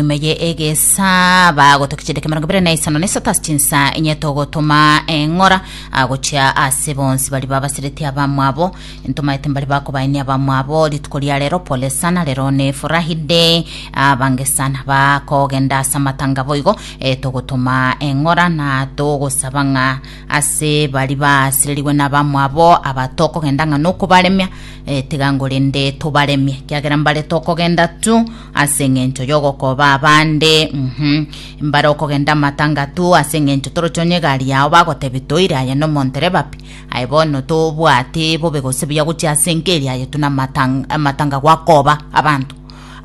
Nyuma ye egesa bagoto kichende kemerongo ibere na isano na isato ase chinsa enye togotoma eng'ora agochia ase bonsi bari babasereti abamwabo ntomaete mbari bakobaenia abamwabo rituko ria rero pole sana rero ne furahi day abange sana bakogenda ase amatanga boigo e, togotoma eng'ora na togosaba ng'a ase bari basererigwe na abamwabo abatokogenda ng'a nokobaremia e, tiga ngorende tobaremie kiagera mbare tokogenda tu Ase engencho yogokoba abande, uhmm, mbare okogenda amatangatu, ase engencho toroche onye egari yao bagotebia toire aye nomontereba pi, aye bono tobwate bobe gose buya gochia ase engeri aye tuna amatang- amatanga gwakoba abanto.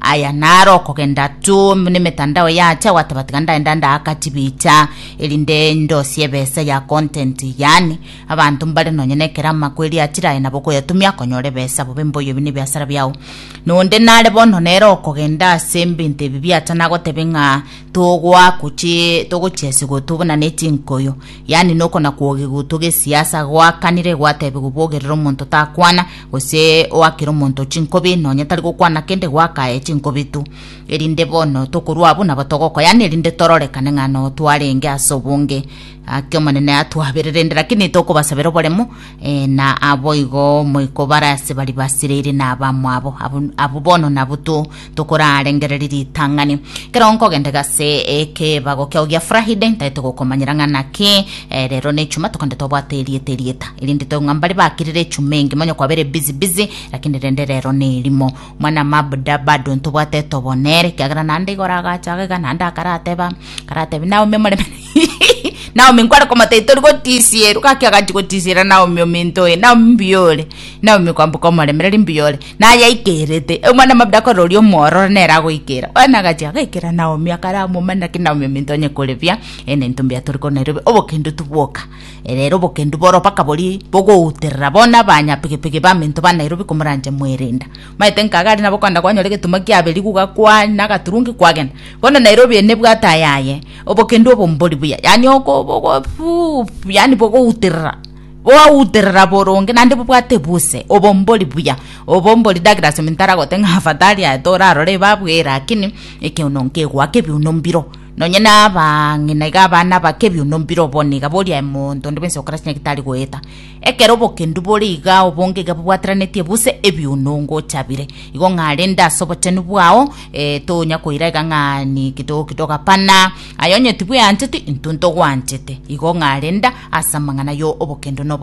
Aya naro okogenda tu nemetandao yacha gwateba tiga ndaenda ndaaka chibicha erinde ndosie ebesa ya content yaani abanto mbare nonye nekero amakweri achire aye nabo okoyatumia konyora ebesa bobe mboyo ebi nebiasara biao Nonde nare bono nere okogenda ase ebinto ebi biachana agotebe ng'a togoa gochi togochia ase gotobwa buna ne chinkoyo, yaani nokona kwoge gotwa gesiasa, goakanire gwatebiwa bogerere omonto takwana, gose oakere omonto chinkobi nonya tari gokwana kende goaka aye chinkobi tu. Erinde bono tokorwa abwo nabo togokwa, yaani erinde tororekane ng'a noo twarenge ase obonge, aa ki'Omonene atwabererende, lakini tokobasabera oboremu, Ee, na aboigo moiko bare ase baria basireire nabamwabo, abwo abwo bono nabwo to tokorarengereria ritang'ani. Ekero nkogenda gase ekebago kiao gia Friday, ntaete gokomanyera ng'a naki eh, rero ne Echuma tokende tobwate erieta erieta, erinde toigwe ng'a mbare bakirire echuma engi monya kwabere busy busy, lakini rende rero nerimo. Mwana mabuda bado ntobwate etobo nere, ekiagera naende igo oragacha iga naende akarateba, akaratebia naumia omorembe. Naomi nkware komoteita ori gotisierwa gaki agachi gotisiera Naomi ominto oye Naomi mbiyore Naomi kwambuka omoremereri mbiyore naye aikerete omwana mabda akora oria omwororo nere agoikera bwana agachi agaikera Naomi akaramomani naki Naomi ominto onye koribia ene into mbiya tori kona erobe obokendu tibwoka erero obokendu boro mpaka bori bogouterera bona banya pigipigi baminto ba Nairobi komoranche mwerenda Maete nkaga aria nabo kogenda kwanyora egetunwa kiaberigu gakwa na agaturungi kwagenda. Bono Nairobi eye nebwate ayaye. Obokendu obo mbori buya. Yaani oko bogo fuu yaani bogouterera. Bwauterera boronge naende bobwate buse. Obo mbori buya. Obo mbori Douglas ominto aragote ng'a afadhali aye torarore ebabu eye lakini ekeono nkegoaka ebiuno mbiro. Nonye na abang'ina iga abana bake ebiuno mbiro bono iga boria aye monto onde bwensi ogokora chinyagete tari goeta. Ekero obokendu bore igaa obongeiga bobwateranetie buse ebiuno ngochabire, igo ng'a rende ase obochenu bwao eh, tonya koira iga ng'a ni kitogoki togapana, aye onye tibweancheti, intwe ntogwanchete, igo ng'a renda ase amang'ana yo obokendo nobo.